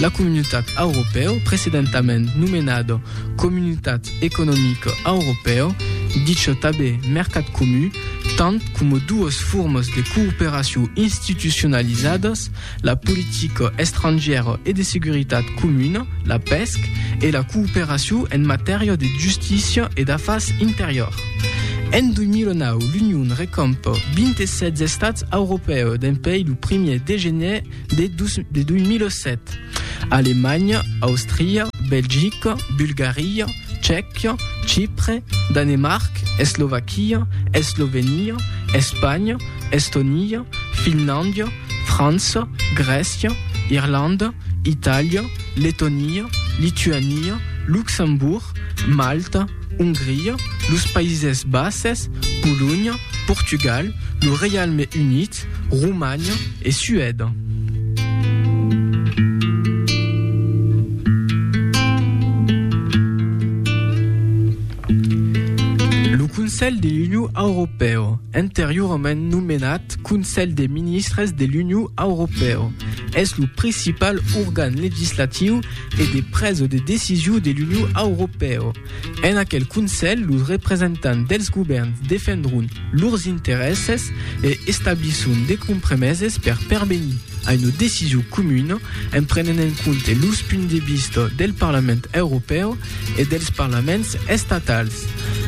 La Comunitat Auropèu, precedentament nomenada Comunitat Economica Auropèu, dicha tanben Mercat Comu, tant coma duas formas de cooperacion institucionalizadas, la politica estrangièra e de seguretat comuna, la pesc, e la cooperacion en matèria de justícia e d'afars interiors. En 2009, l'Union recompa 27 estats auropèus dempuèi lo primièr de gener de 2007. Alemanha, Austria, Belgica, Bulgaria, Tchèquia, Chipre, Danemarc, Eslovaquia, Eslovenia, Espanha, Estonia, Finlàndia, França, Grècia, Irlanda, Itàlia, Letonia, Lituania, Luxembourg, Malta, Ongria, los Païses Bases, Polonha, Portugal, lo Reialme Unit, Romanha e Suèda. Lo Conselh de l'Union Auropèo, anteriorament nomenat Conselh de Ministres de l'Union Auropèo, es lo principal organ legislatiu e de presa de decision de l'Union Auropèo. En aquel Conselh, los representants dels govèrns defendròn lors interèsses e establisson de compremeses per pervenir a una decision comuna en prenent en compte los punts de vista del Parlament Europèu e dels Parlaments estatals.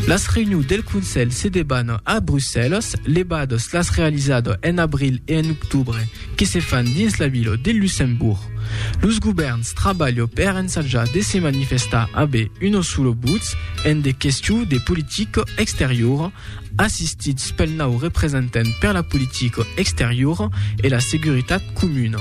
Las reünions del Conselh se debannan a Brussèlas, levadas las realizadas en abril e en octobre que se fan dins la vila de Luxembourg. Los govèrns trabalho per ensajar de se manifestar ab uno sulo buts en de questions de politica exteriora, assistids pel nau representent per la politica exteriora e la seguritat comuna.